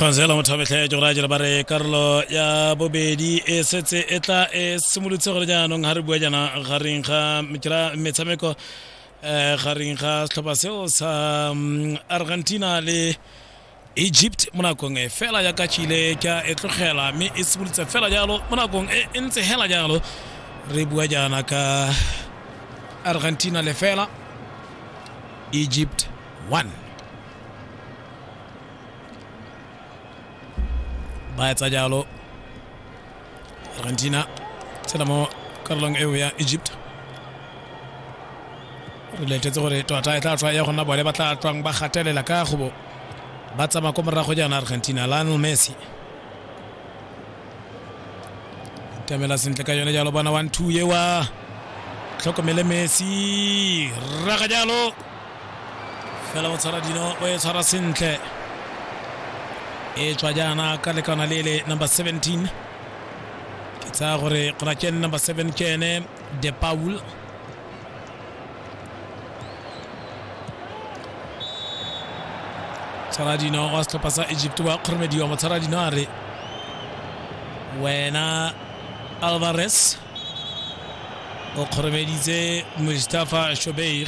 kgonsela mothabetlhe jogoraje ba re karolo ya bobedi e setse e tla e simolotse gore jaanong ga re bua jaana gareng ga metshameko um gareng ga setlhopha seo sa argentina le egypt mo nakong e fela ya ka chile ka e tlogela mme e simolotse fela jalo mo nakong e e ntse hela jalo re bua jaana ka argentina le fela egypt 1 ba etsa jalo argentina tshela mo karolong eo ya egypt re letetse gore tota e tla tswa ya gona bone ba tla tswang ba gatelela ka gobo ba tsamaya ko morago jaana argentina lionel messi tamela sentle ka yone jalo bona one two yewa tlhokomele messi raga jalo fela o tshwara dino o e tshwara sentle e tswa jaana ka lekana le le number 17 ke tsaya gore gona ke number 7 ke ene de paul tshwaradino wa setlhopha sa egypt wa kgoromediwa motshwaradino a re wena alvarez o kgoromeditse mustafa shobeir